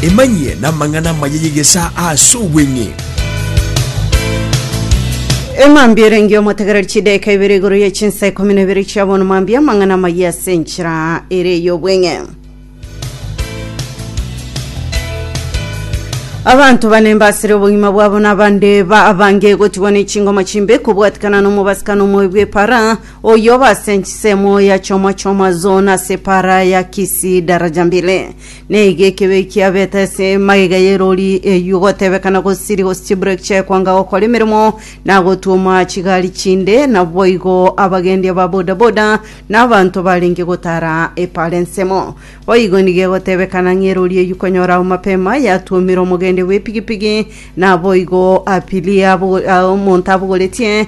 Emanyie namang'ana amaya y'egesaa ase obweng'e. Emambia erenge omotegereri chidaeka ibere igoro ye chinsa ikomi na ibere chia bono mambia amang'ana amaya ase enchera ere ey'obweng'e. Abanto bane mbasire obogima bwabo na abande ba abange gotigwa ne chingoma chimbe kobwatikana nomobasika nomoyo bw'epara Oyio base nchisemo ya choma choma zona ase para ya kisi daraja mbili. Neiga ekebe kia beta ase magega y'erori eyio gotebekana gosiri gosichiburek chekwanga gokora emeremo na gotuoma chigari chinde naboigo abagendi aba boda boda na abanto barenge gotara epara ensemo. Boigo nigo egotebekana ng'a erori eyio konyora ao mapema yatuomire omogendi bw'epigipigi naboigo apirie abo- omonto abogoretie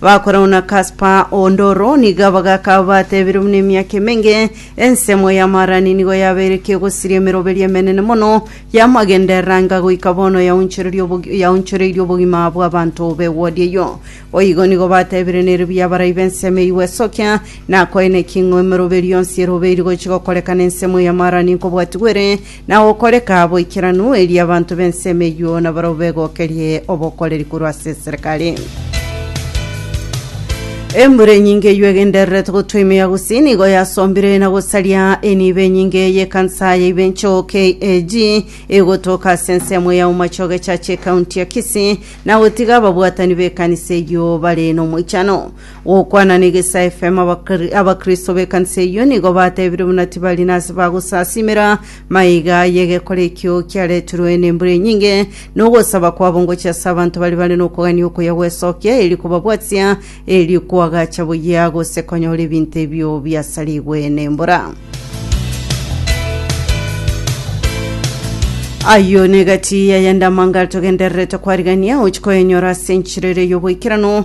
Bakorau na kaspa o ndoro niga bagakaba batebire buna emiaka emenge, ensemo y'amaarani nigo yabeire kegosiria emeroberio emenene mono y'amagenderera anga goika bono yaunchoreria obogi- yaunchoreirie obogima bw'abanto b'ewodi eyio. Boigo nigo batebire nere buya abarai b'ensemo eyio gwesokia, nakoene ki ng'o emeroberio yonsi erobeiri gochi gokorekana ensemo y'amaarani nkobwatigwere, na gokoreka boikeranu, erio abanto b'ensemo eyio nabarabwo begokerie obokoreri korwa ase eserekari. Embura enyinge eyio egendererete gotwa ime ya gusii nigo yasombire na gosaria enibo enyinge y'ekansa ya Ibencho KAG egotoka ase ensemo ya Umachoge Church ecounty ya Kisii na gotiga ababwatani b'ekanisa eyio bare nomoichano. Gokwana negesae FM abakri- abakristo b'ekanisa eyio nigo batebire buna tibari nase bagosasimera maiga y'egekora ekio kiaretirwe nembura enyinge, nogosaba kwabo ngochia ase abanto baria bare nokogania okuya gwesokia, eri kobabwatia, eri koagacha buya, gose konyora ebinto ebio biasarigwe nembura. Ayio negati yayende amangare togendererete kwarigania, ochikoyenyora ase enchera eria y'oboikeranu,